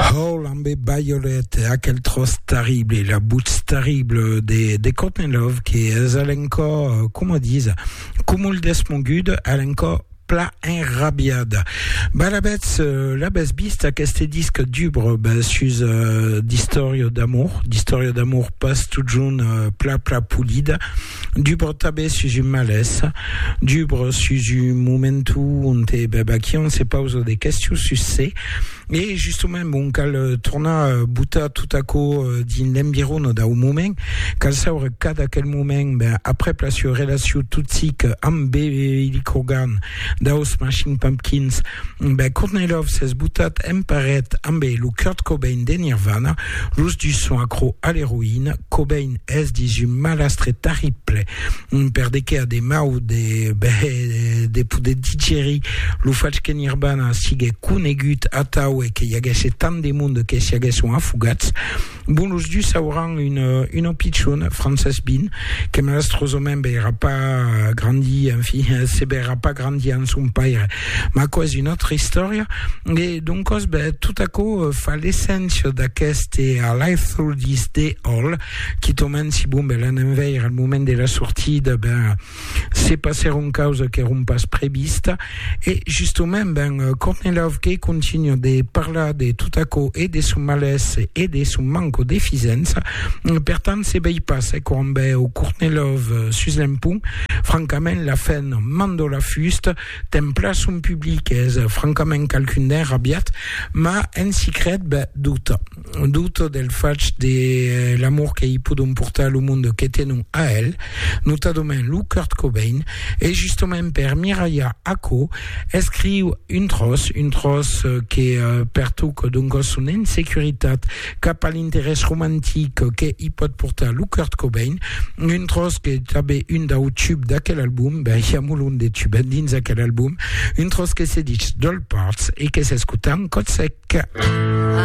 Hall ambe Baiolet, aquel tròç terrible, la butz terrible de, de Cotnelov, que es alencò, com a disa, cumul desmoguda, alencò pla enrabiada. Ba l'abètz, l'abètz vist aqueste disc dubre ben, sus uh, d'istòria d'amor, d'istòria d'amor pas totjorn uh, pla pla polida, Du bro tabé sus un malesa, du bro sus un momentu onte Babakian se pausa de questions sus se, e justament bon cal tornar botar tot aquò dins l'environa dau moment, cal saure cada quel moment ben aprèp la sua relacion toxica amb Billy Corgan Dau Smashing Pumpkins, ben Courtney Love s'es botat en paret ambe lo Kurt Cobain de Nirvana, los dus son acro a l'eroïna, Cobain es dins un malastre tarrible per de qué a de mau de, ben, de poder digerir lo fach que Nirvana siguec conegut atau e que i aguèsse tant de monde que s'i aguèsson afogats. Bon, los dus auran una, una pichona, Frances Bean, que malastrosament veirà pas grandir, enfin, se veirà pas grandir amb son paire. Ma quò és una autra istòria. E doncòs, ben, tot aquò euh, fa l'esséncia d'aqueste A Life Through This Day All, quitament si bon, ben, l'anem veire al moment de la sortida, ben, se passèron causas qu'èron pas prevista e justament ben Kornilov que continua de parlar de tot aquò e de son malès e de son manco de fisença per tant se vei pas e quan veu Kornilov sus l'empont francament la fen mandó la fusta templa son public es francament qualqu'un d'enrabiat ma en secret ben dota dut del fach de l'amor que i podon portar a lo monde que tenon a el, notadament lo Kurt Cobain, e justament per miralhar aquò, escriu un tròç, un tròç que pertoca donc a son insecuritat cap a l'interès romantic que i pòt portar lo Kurt Cobain, un tròç qu'es tanben un dau tubs d'aquel album, ben i a molon de tubs dins aquel album, un tròç que se ditz Dollparts e que s'escota en còth sec.